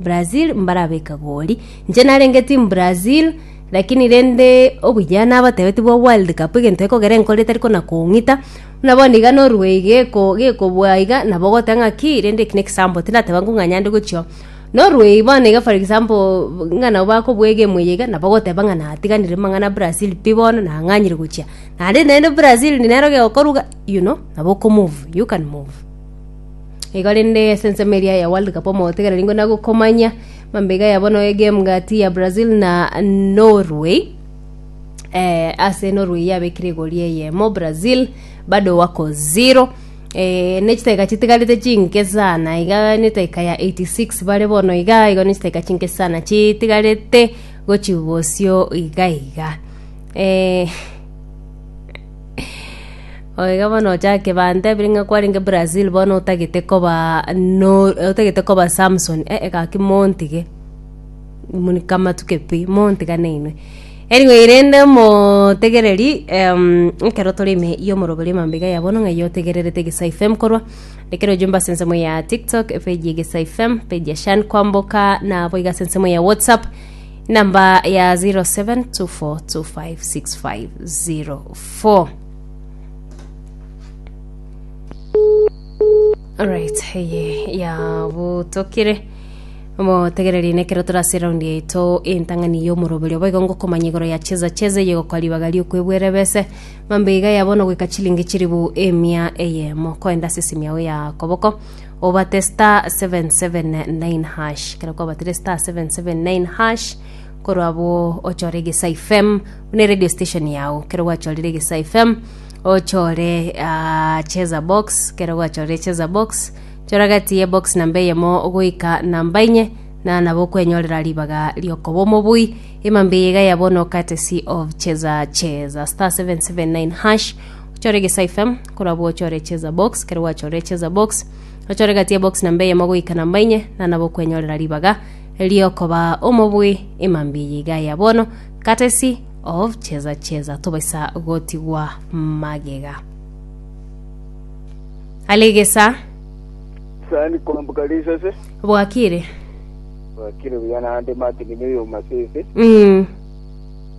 Brazil mbarabeka goli. Inche narenge team Brazil lakini rende obuya nabatebetie bwa World Cup egento ekogera enkoro etari kona kong'ita buna bono iga Norway geko gekobua iga nabo ogoteba ng'a ki rende eki na ekisambo tindateba ng'o ng'a nyande gochia Norway bono iga for example ng'a nabo bakobua egame eye iga nabo ogoteba ng'a natiganire mang'ana a Brazil pi bono nang'anyire gochia naende naende Brazil nero gegokorwa iga you know nabo okomove you can move. Igo rende ase ensemo eria ya World Cup omogotegera ningo nagokomanya mambega ya bono egame gati ya Brazil na Norway eh, ase Norway yabekire egori eyemo Brazil bado wako zero eh, ne chitaika chitigarete chinke sana iga netaika ya 86 bare bono iga igo ne chitaika chinke sana chitigarete gochi bosio iga iga eh, Oye iga bono ochake bantebire ng'a kwarenge Brazil bono otagete koba no otagete koba Samson eh gaki montige, moni kamatuke pi, montigane inwe. Anyway rende motegereri ekero tore ime ya omorobori emambe iga ya bono ng'ai otegererete Egesae FM korwa, ekero ojumbe ase ensemo ya tiktok, epeji ya Egesae FM, epeji ya Sean Kwamboka, nabo iga ase ensemo ya WhatsApp. Number ya 0724256504. Alright, eye yabutokire motegereri nekero turase raundi yaito entang'ani y'omoroberi obo igo ngokomanya igoro ya cheza cheza eye gokwa ribaga riokwebwere bese mambe iga yabono goika chilingi chiribu emia eyemo koenda ase esimi yao ya koboko obate *779#, ekero kwabatire *779#, korwa abwo ochore egesa ifm buna eradio station yago ekero gwachorire egesa ifm ochore ah, cheza box ekero gwachorire cheza box chora gati ye box namba eyemo goika namba inye na nabo okwenyorera ribaga riokoba omobui emambia eye iga ya bono courtesy of cheza cheza *779# ochore egesa ifm korabwo ochore cheza box kero gwachorire cheza box ochore gati ya box namba eyemo goika namba inye nana bokwenyorera ribaga riokoba omobui emambi eye iga ya bono courtesy of cheza cheza tobaisa gotigwa magega alegesa sani kwambuka risase bwakire bwakire buya nande martin noyo masese mm.